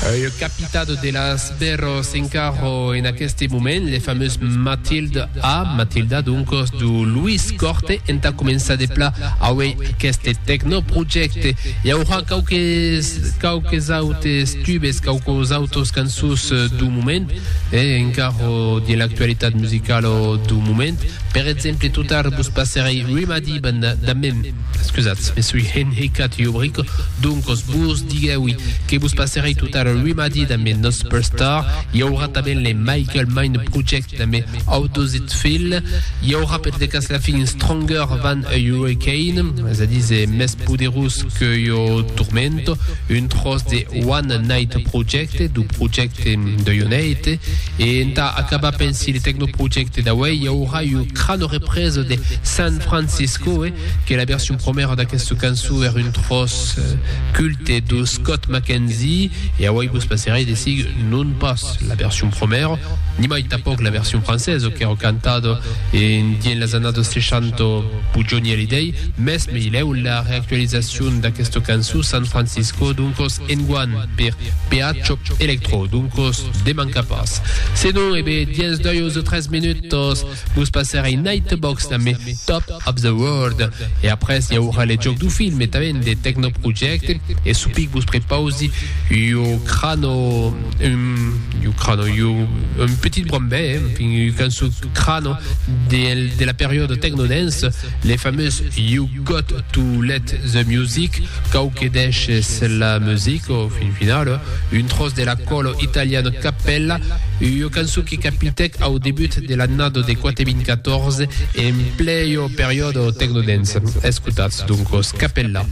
Ua capitado de las bèrros en carro en aqueste moment, le famós Matilde A, Matilda doncos, do Luis Corte. Entà començar de pla aué aqueste tecnoprojècte, i aurà quauques, quauques autes tubes, quauques autos cançons. sus do moment e encara de l'actualitat musicala do moment. Per exemple, totard vos passerei Rimadi Band da mem, scusatz, me soi enhecat jo bric, doncos vos diguèui que vos passerei totard Rimadi da mes nos Superstar, i aurà tanben le Michael Mind Project, Damb au dositz fil, i aurà per de cas la fin Stronger than a Hurricane, es a díser mès poderós que ua tormenta, un tròç de One Night Project, dau projècte deu Neite, e entà acabar pensi le tecnoprojècte d'auèi i aurà ua crana represa de San Franciscoe, que la version promèra d'aquesta cançó èra un tròç culte dau Scott McKenzie, e auèi vos passerai de sigue, non pas. pas la version promèra, nimai tanpòc la version francesa qu'èra cantada en dins las annadas 60 pus Johnny Hallyday, mès mai lèu la reactualizacion d'aquesta cançó San Francisco doncos enguan per Peacho Electro, doncos de manca pas. Se non, e be, dins 2 o 3 minutas, Vos passarei Nightbox damb me Top of the World e après i aurà le jòc du film e tanben de Techno Project e supic vos prepausi ua crano un ua crano ua un petit brombè en fin ua cançon crano del de la periòda Techno Dance le famós You Got to Let the Music cau que deishes la musica au fin final un tròç de la còlo italiana Cappella ua cançon qui capitèc au debut de l'annada de 4014 e en plei au periòde tecnodens. Escotatz, doncos, Capella.